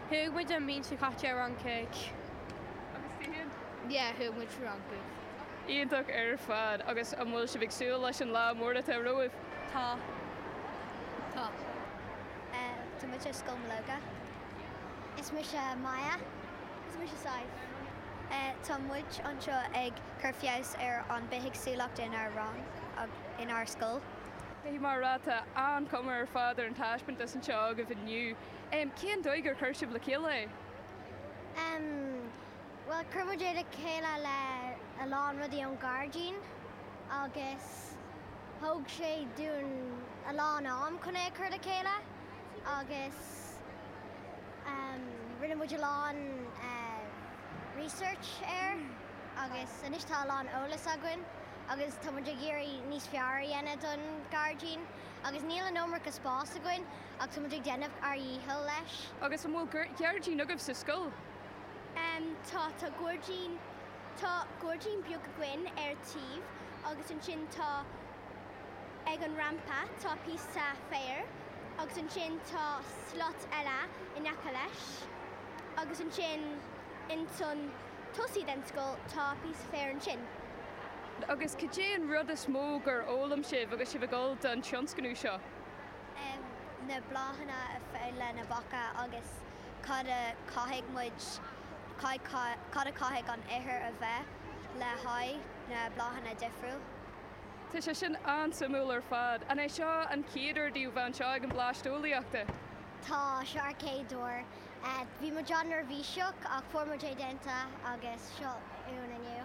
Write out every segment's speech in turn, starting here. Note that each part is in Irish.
Chuaigh muid an bhliain seo caite ar Fhrancaigh. Agus tú féin? Yeah, chuaigh muid Fhrancaigh. Iontach ar fad! Agus an bhfuil sibh ag súil leis an lá mór atá romhaibh? Tá. Tá. Tá muid ar Scoil Mológa. Is mise Maya. Is mise Sadhbh. Tá muid anseo ag cur feabhas ar an bithéagsúlacht inár rang, inár scoil. Caithfidh mé a rá, tá an-chuma ar fad ar an taispeántas anseo agaibh inniu. Cén dóigh gur chuir sibh le chéile é? Bhuel, chuir muid é le chéile le a lán rudaí ón ghairdín agus thóg sé dúinn a lán am chun é a chur le chéile agus rinne muid a lán research air agus anois tá a lán eolas againn agus tá muid ag iarraidh níos fearr a dhéanamh don ghairdín agus níl an iomarca spás againn. Ach tá muid ag déanamh ár dhícheall leis. Agus an bhfuil gairdín agaibh sa scoil? Tá, tá gairdín, tá gairdín beag againn ar taobh agus ansin tá, ag an rampa, tá píosa féir agus ansin tá slot eile in aice leis agus ansin ins an tosaí den scoil tá píosa féir ansin. Agus cad é an rud is mó gur fhoghlaim sibh agus sibh ag dul don tionscnamh seo? na bláthanna a fhad le na beacha agus cad a chaithfidh muid, cad a chaithfidh an ithir a bheith le haghaidh na bláthanna difriúil. Tá sé sin an-suimiúil ar fad. An é seo an chéad uair daoibh bheith anseo ag an Blast Eolaíochta? Tá, seo ár gcéad uair. Bhí muid an-neirbhíseach ach fuair muid é déanta agus seo uainn inniu.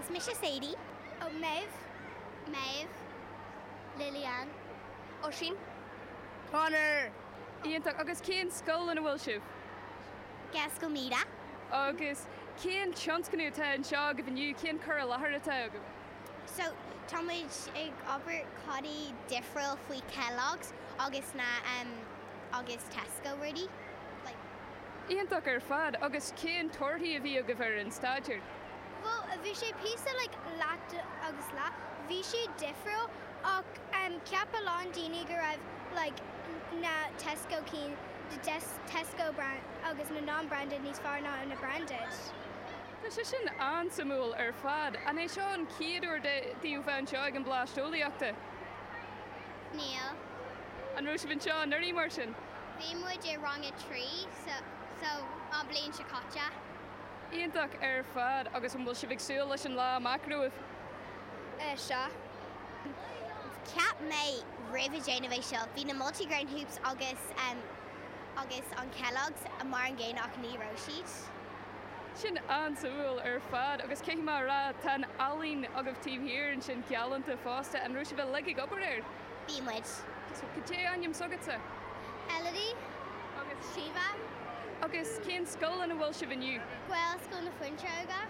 Is mise Sadie. Oh Maeve. Maeve. Lillian. Oisín. Conor. Iontach. Agus cén scoil ina bhfuil sibh? Gaelscoil Míde. Agus cén tionscnamh atá anseo agaibh inniu? Cén cur i láthair atá agaibh? So, tá muid ag obair codaí difriúil faoi Kellogg's agus na em agus Tesco rudaí. Like. iontach ar fad. Agus cén torthaí a bhí agaibh ar an staidéar? Bhuel, bhí sé píosa like leath agus leath. Bhí siad difriúil ach em cheap a lán daoine go raibh like na Tesco cinn the Tesco brand agus na non-branded níos fearr ná na branded. Tá sé sin an-suimiúil ar fad. An é seo an chéad uair de daoibh bheith anseo ag an Blast Eolaíochta? Níl. An raibh sibh anseo anuraidh mar sin? Bhí muid i rang a trí so an bhliain seo caite. Iontach ar fad agus an bhfuil sibh ag súil leis an lá amach romhaibh? Sea. Cheap mé roimh a déanamh é seo bhí na multigrain hoops agus agus an Kellogg's mar an gcéanna ach ní raibh siad. Sin an-suimiúil ar fad, agus caithfidh mé a rá, tá an ealaín agaibh taobh thiar ansin galánta fosta. An raibh sibh uilig ag obair air? Bhí muid. Cad é ainm s'agatsa? Elodie. Agus? Siobhán. Agus cén scoil ina bhfuil sibh inniu? Gaelscoil na Fuinseoige.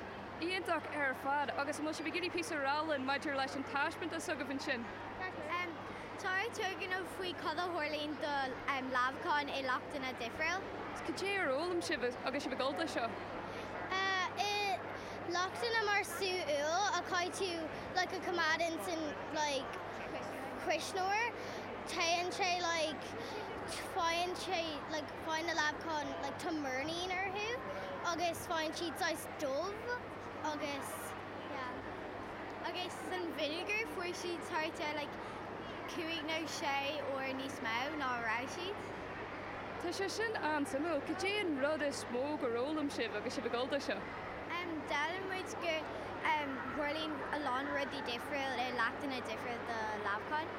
Iontach ar fad, agus an bhfuil sibh ag iarraidh píosa a rá linn maidir leis an taispeántas agaibh ansin? Tá ár turgnamh faoi cad a tharlaíonn do leamhacháin i leachtanna difriúla. Cad é ar fhoghlaim sibh agus sibh ag gabháil dó seo? I leachtanna mar sú úll a caithfidh tú like a coimeád insan like cuisneoir téann sé like faigheann sé like faigheann na leamhacháin like tá murnín orthu agus faigheann siad saghas dubh agus Yeah. Okay, so san vinegar fuair siad thart ar like cúig nó sé uair níos mó ná a raibh siad. Tá sé sin an-suimiúil, cad é an rud is mó gur fhoghlaim sibh agus sibh ag gabháil dó seo? Um, D'fhoghlaim muid gur um, tharlaíonn a lán rudaí difriúil ar leachtanna difriúil do leamhacháin.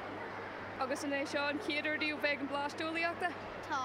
Agus an é seo an chéad uair daoibh bheith ag an Blast Eolaíochta? Tá.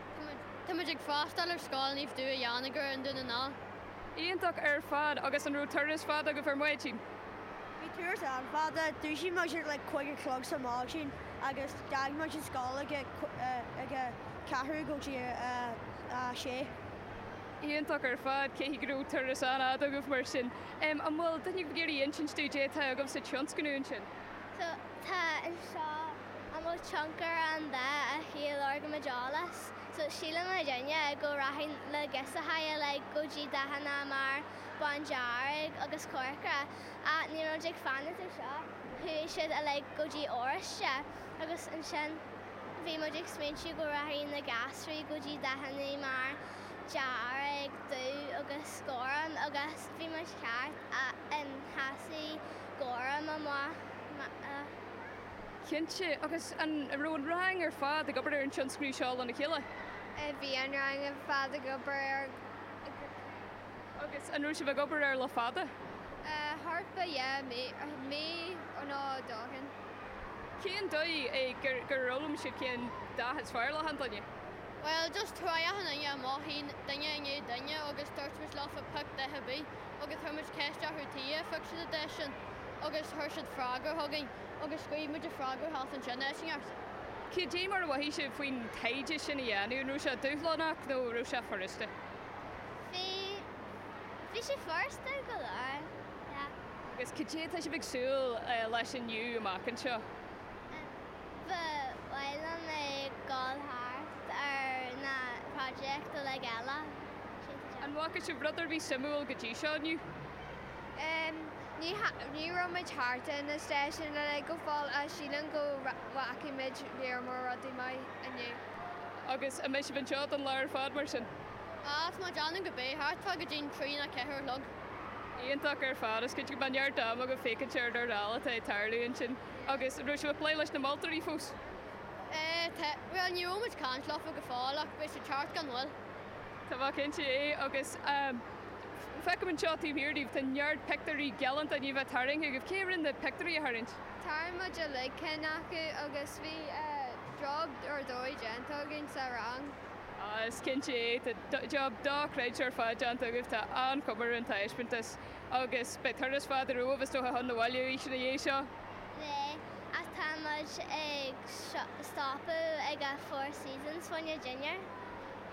Tá muid ag freastáil ar Scoil Naomh Duigh in Anagaire, Dún na nGall. Iontach ar fad agus an raibh turas fada agaibh ar maidin? Bhí turas an-fhada. Dhúisigh muid ar like cúig a chlog sa maidin agus d'fhág muid an scoil ag a ag a ceathrú go dtí a a sé. Iontach ar fad, caithfidh go raibh turas an-fhada agaibh mar sin. Em an bhfuil duine ag iarraidh insint dúinn cad é atá agaibh sa tionscnamh ansin? So tá anseo. An bhfuil tionchar ag an dath earcaigh i lorg meidealas? So síleann daoine go rachaidh na girseachaí uilig go dtí dathanna mar bándearg agus corcra ach níl muid ag fanacht ar seo, chuaigh siad uilig go dtí oráiste agus ansin bhí muid ag smaointiú go rachaidh na gasraí go dtí dathanna mar dearg, dubh agus gorm agus bhí muid ceart, sheasaigh gorm amach. Cinnte. Agus an raibh an rang ar fad ag obair ar an tionscnamh seo lena chéile? Bhí an rang ar fad ag obair air go cinnte. Agus an raibh sibh ag obair air le fada? Thart fá dheich mí, mí nó dhó ó shin. Cén dóigh é gur gur fhoghlaim sibh cén dath is fearr le achan duine? Bhuel, just thriail achan duine amach ansin, duine i ndiaidh duine agus dúirt muid leo 'pioc dath ar bith'. agus chuir muid ceist orthu tuige ar thug siad an deis sin agus chuir siad freagra chugainn agus scríobh muid an freagra thall ansin, Iontach. Cad é mar a mhothaigh sibh faoin taighde sin a dhéanamh, an raibh sé dúshlánach nó an raibh sé furasta? Bhí, bhí sé furasta go leor, yeah. Agus cad é atá sibh ag súil leis inniu amach anseo? Ba mhaith liom ag dul thart ar na projects uilig eile. An bhfaca sibh rud ar bith suimiúil go dtí seo inniu? Ní raibh muid thart ar na stáisiúin uilig go fóill ach sílim go bhfaca muid lear mór rudaí maith inniu. Agus an mbeidh sibh anseo don lá ar fad mar sin? Tá mé ag déanamh go mbeidh thart fá go dtí an trí nó ceathair a chlog. Iontach ar fad. Is cinnte go mbeidh neart ama agaibh féachaint ar rudaí eile atá ag tarlú ansin. Agus an raibh sibh ag plé leis na moltóirí fós? Tá, bhuel ní raibh muid ag caint leofa go fóill ach beidh siad thart gan mhoill. Tá mé cinnte de. Agus feicim anseo taobh thiar díbh, tá neart pictiúirí galánta d'ainmhithe tarraingthe agaibh. Cé a rinne na pictiúirí a tharraingt? Tharraing muid uilig ceann acu agus bhí job ar dóigh déanta againn sa rang. Ah, is cinnte é. Tá job dochreidte ar fad déanta agaibh. Tá an-chuma ar an taispeántas. Agus beidh turas fada romhaibh, is dócha, chun an bhaile arís ina dhiaidh seo? Beidh, ach tá muid ag stopadh ag an Four Seasons, fá choinne dinnéar.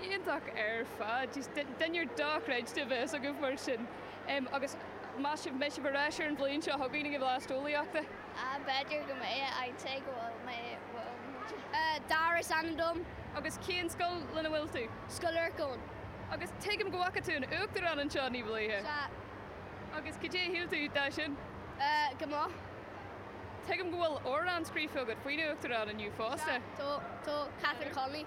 Iontach ar fad. Jeez, dinnéar dochreidte a bheas agaibh mar sin. Em, agus meas sibh, mbeidh sibh ar ais ar an bhliain seo chugainn ag an Bhlast Eolaíochta? Ah, b'fhéidir go mbeidh, I'd say go bhfuil mé, bhfuil muid. Eh, Darragh is ainm dom. Agus cén scoil lena bhfuil tú? Scoil Lorcáin. Agus tuigim go bhfaca tú an Uachtarán anseo ní ba luaithe? Sea. Agus cad é a shíl tú de sin? Eh, go maith. Tuigim go bhfuil amhrán scríofa agat faoin Uachtarán inniu fosta? Sea, tá, tá, Catherine Connolly.